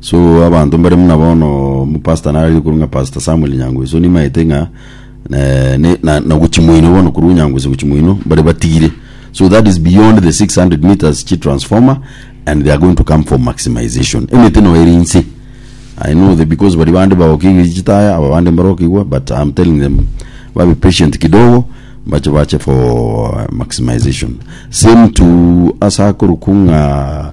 So abanto mbare buna bono omopastor nararire korwa ng'a Pastor Samuel Nyangwesi, so nimaete ng'a eh, ne- na- nagochimoino bono korwa Nyangwesi gochimoino mbare batigire. So that is beyond the 600 meters chi transformer and they are going to come for maximization. Emete no eri inse. I know the because bari bande bagokiigwa chitaya aba bande mbarokigwa but I'm telling them babe patient kidogo bache bache for maximization. Same to asa korokwa ng'a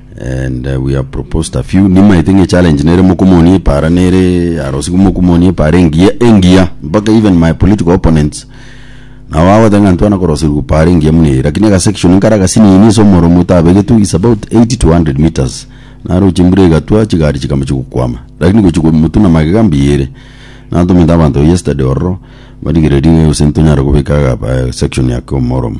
and uh, we have proposed a few nimaete ng'e challenge nere mokomonia epara nere arosigu mokomonia epara engiya engiya mpaka even my political opponents nabo bagoteba ng'a ntwana korosirwa para engiya muna eye lakini agasection nkare agasinini ase omoromo otabegetwe is about 80 to 100 meters naro chimbura egatwa chigari chikama chigokwama lakini gochi komotuna magega mbuya ere natomete abanto yesterday ororo barigererie gose ntonyare gobeka aga- eh, section ake omoromo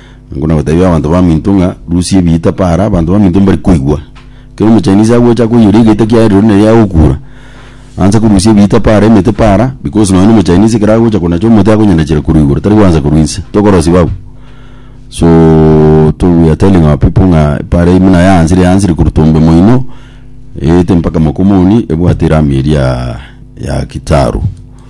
Nigo nagoteebia abanto baminto ng'a, Rusia ebiita para, abanto baminto mbare koigwa. Ekero Omochinese agocha koiyora egeita kiaye rirorio nere agokuura. Aanche korusia ebiita para, emete para, because nonye na Omochinese ekero agocha konacha omote akonyanachera korwa igoro, tari goancha korwa inse. Tokorosia babu? So to we are telling our people ng'a para eyio buna yaansire, yaansire korwa tombe moino, eete mpaka mokomoni, ebwate erami eria ya kitaru.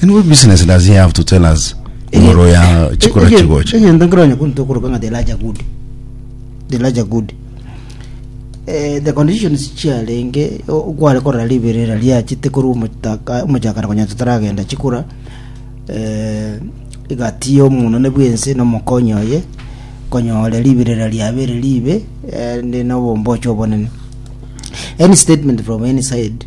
Then what business does he have to tell us ngoro ya chikora chigocha? egento nkero nyakuntu tokoroka ng'a the larger good the larger good Eh, the conditions chiarenge o- kware korora riberera riachete korwa omotaka- omochakara konya totaragenda chikura eh, egati y'omonene bwense nomokonyi oye konyore riberera riabere ribe eh, ndi nobombocho obonene any statement from any side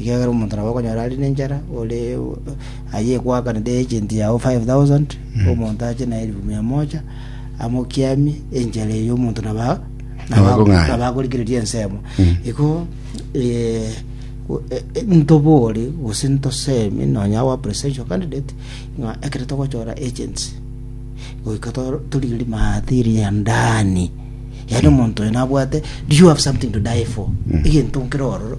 Ekiagera omonto nabo okonyora are nenchara, ore aye egwakanete agent yao 5000, omonto ache na elifu mia moja, amokiamie, enchara eyo omonto naba Nabakong'aina. nabakorigereria ensemo. Iko eh, o- eh, eh, ntobore gose ntosemi nonya our presidential candidate ng'a ekero togochora agents goika to- torigerie maadhiri ya ndani yaani omonto oyo nabwate do you have something to die for egento nkere ororo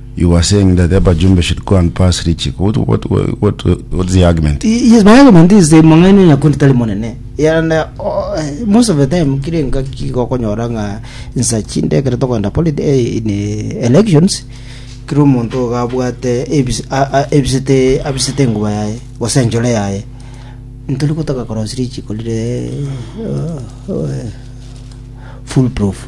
You are saying that Eba Jumbe should go and pass Richie. What, what, what, what, what's the argument? Y- Yes, my argument is eh, mong'aini nyakundi tari monene and eh, oh, eh, most of the time kire engaki gokonyora ng'a nsa chinde ekero tokogenda polit- eh, in eh, elections kire omonto iga abwate ebis- a- a- ebisete abisete enguba yaye gose enchore yaye ntori gotoka korosi richiko rire eh, oh, eh, full proof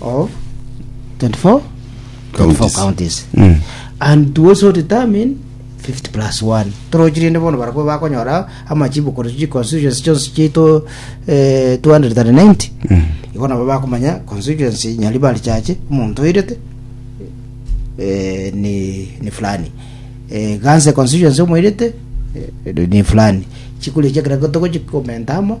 of 24 24 counties Mm. and to also determine 50 plus 1 torochi rinde bono barabwo bakonyora amachibu kore chi constituency chionsi chito eh, 290 Mm. igo nabo bakomanya constituency nyaribari chache omonto oirete eh, ni, ni fulani eh, ganse constituency omoirete eh, ni fulani chikuri chekera togochikomenta amo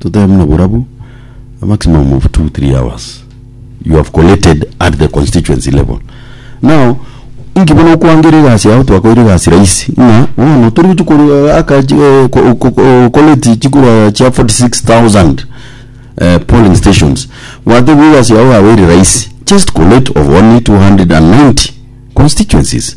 totebe buna borabu a maximum of two three hours you have collated at the constituency level now inki bono okwangera egasi yao twakoire egasi rahisi ng'a bono tori gochia korwa aka chi eh, ko- ko- ko- collate chikura chia 46000 eh, polling stations gwatebwa egasi yao yaba ere rahisi just collate of only 290 constituencies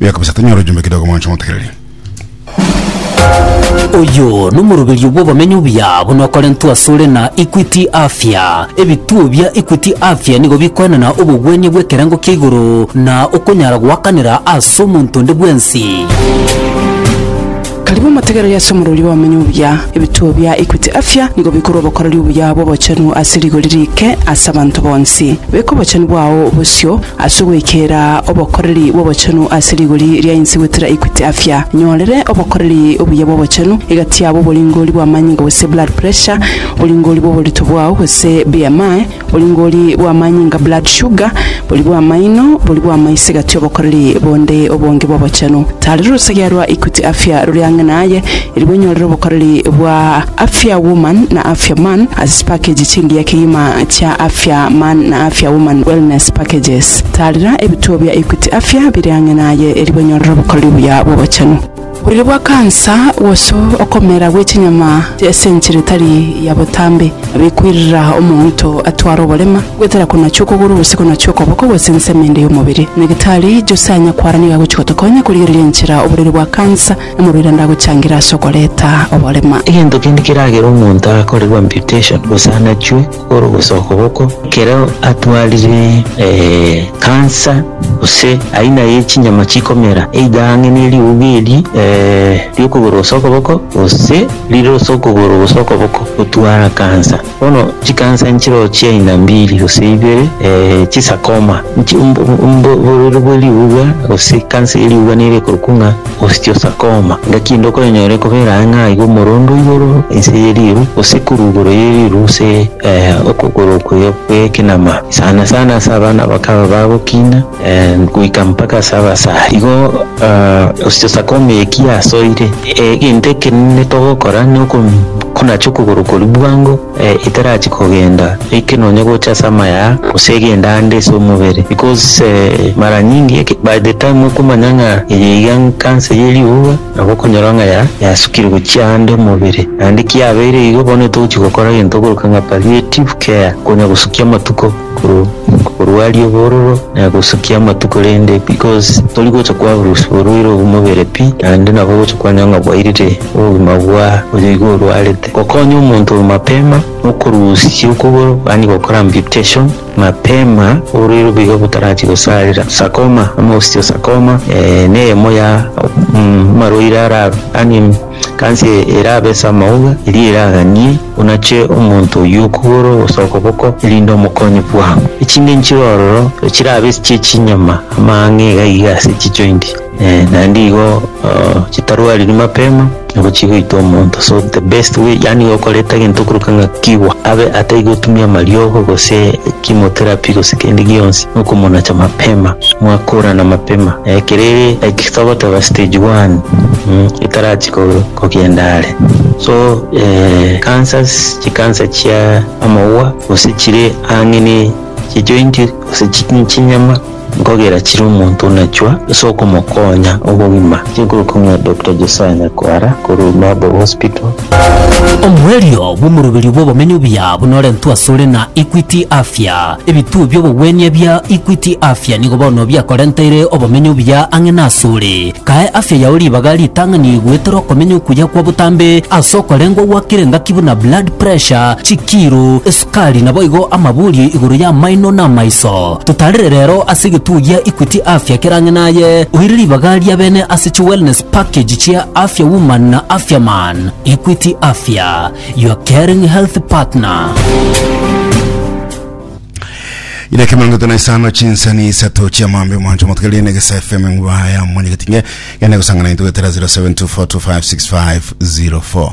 Buya kabisa, tonyore ojumbe kidogo mwancho motegereri. Oyo nomoroberio bw'obomenyo obuya buna okorentwa asore na Equity Afya. Ebituo bia Equity Afya nigo bikoenana obogwenia bw'ekerengo kia igoro na okonyara goakanera ase omonto onde bwensi. Karibu motegereri ase omorweri bw'abamenya obuya. Ebituo bia Equity Afya nigo bikorwa obokoreri obuya bw'obochenu ase rigori riike ase abanto bonsi. Beka obochenu bwao bosio ase ogoikera obokoreri bw'obochenu ase rigori ria inse goetera Equity Afya. Nyorere obokoreri obuya bw'obochenu egati yabo oboringori bw'amanyinga gose blood pressure, oboringori bw'oborito bwao gose BMI, Oringori bw'amanyinga, blood sugar, bori bw'amaino, bori bw'amaiso egati obokoreri bonde obonge bw'obochenu. Tari rorosegea rwa Equity Afya rore ang'e naye, eri bwenyorere obokoreri bwa Afya Woman na Afya Man ase chipakeji chingiya kegima chia Afya Man na Afya Woman Wellness Packages. Taarera ebituo bia Equity Afya bire ang'e naye eri bwenyorere obokoreri obuya bw'obochenu. Oboriri bwa kansa, gose okomera gwe chinyama chi'esenchiri etari ya botambe, nabikwirira omonto atware oborema, goetera konachi okogoro gose konachi okoboko gose ensemo ende y'omobere. Nyagitari Jose aanya kwara nigo agochia gotokonya korigereria enchera oboriri bwa kansa na morwaire ande agochangera ase okoreta oborema. Egento kende keragere omonto akorerwe amputation gose anachwe. korogose okoboko. Ekero atwarire ekansa gose aina ye chinyama chikomera either ang'e ne riuga eri ri'okogoro gose okoboko gose rire gose okogoro gose okoboko gotwara kansa. Bono chikansa nchireo chi'aina mbiri gose ibere chi sarcoma oborwaire bwe riuga gose kansa ye riuga nere ekorokwa ng'a. Osteosarcoma, Ngaki inde okoyenyora ekobera ang'e aiga omorondo igoro inse ye riiru gose korwa igoro ye riiru gose okogoro okwo gw'ekenama sana sana ase abana bakaba bagokina goika mpaka ase abasare. Igo Osteosarcoma eye ki yasoire? Egento ekenene togokora na konacha okogoro koria bwango. Eh, itarachi kogenda, like nonya gocha ase amaya gose egenda ande ase omobere because eh, mara nyingi eke- by the time okomanya ng'a eye iga nkansa ye riuga nabo okonyora ng'a ya yasukire gochia ande omobere naende kiabeire igo bono ntogochi gokora egento okoroka ng'a palliative care konya gosukia amatuko korwa korwa aria obororo eh, gosukia amatuko rende because tori gocha kwaburus oborwaire obwo mobere pi naende nabo ogocha kwanyora ng'a bwairire obogima bwa oyo igo orwarete. Gokonya omonto oyo mapema nokorusia okogoro yaani gokora amputation mapema orere obuya botarachia gosarera. Sarcoma ama osteosarcoma eh, neyemo ya mm, amarwaire ara yaani kansa erabe ase amauga eria eraganie onache omonto oyio okogoro gose okoboko erinde omokonye bwango. Echinde nchire ororo chirabe chi'echinyama ama ang'e iga iga ase chijoint. Eeh naende igo chitarwariri mapema nigo chigoita omonto so the best way yaani igo okoreta egento okoruka ng'a kiwa abe atai gotumia amariogo gose chemotherapy gose kende gionsi nokomonacha mapema mwakorana mapema eh, kerere like togoteba stage one mm, etarachi ko- kogenda are so eh, cancers chikansa chia amauwa gose chire ang'e ne chijointi gose chi- chinyama Nkogera chire omonto onachwa ase okomokonya obogima. Tinkoruka ng'a Doctor Josiah Nyakwara korwa Noble Hospital. Omoerio bw'omoroberio bw'obomenyo obuya buna orentwe asore na Equity Afya. Ebituo bi'obogwenia ebia Equity Afya nigo bono biakorenteire obomenyo obuya ang'e nasore. Kae afya yao ribaga ritang'ani goetera okomenya okuya kwa botambe ase okorengwa gwakire ngaki buna blood pressure, chikiro, esukari, Kari naboigo amabuurie igoro y'amaino na amaiso. Totarire rero ase egetugi gia Equity Afya kera ang'e naye, oire ribaga ria bene ase chi wellness package chia Afya Woman na Afya Man. Equity Afya, your caring health partner. Ire kemero ngeto na isano chinsani isato chia mambe mwancho motugere ne gesa FM ngwa ya mwenye getinge gene gusangana intu getera 0724256504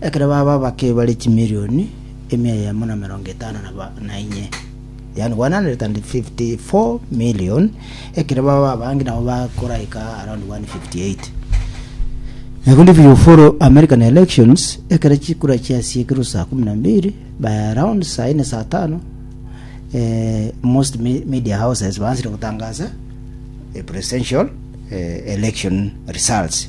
Ekero baba abake bare chimilioni emia eyemo na emerongo etano na inye, yaani 154 million, ekero baba abange nabo bakoraika around 158. Nabondo if you follow American elections, ekero chikura chiasiekirwe saa kumi na mbili by around saa ine saa tano eh, most me- media houses bansire gotangasa a presidential eh, election results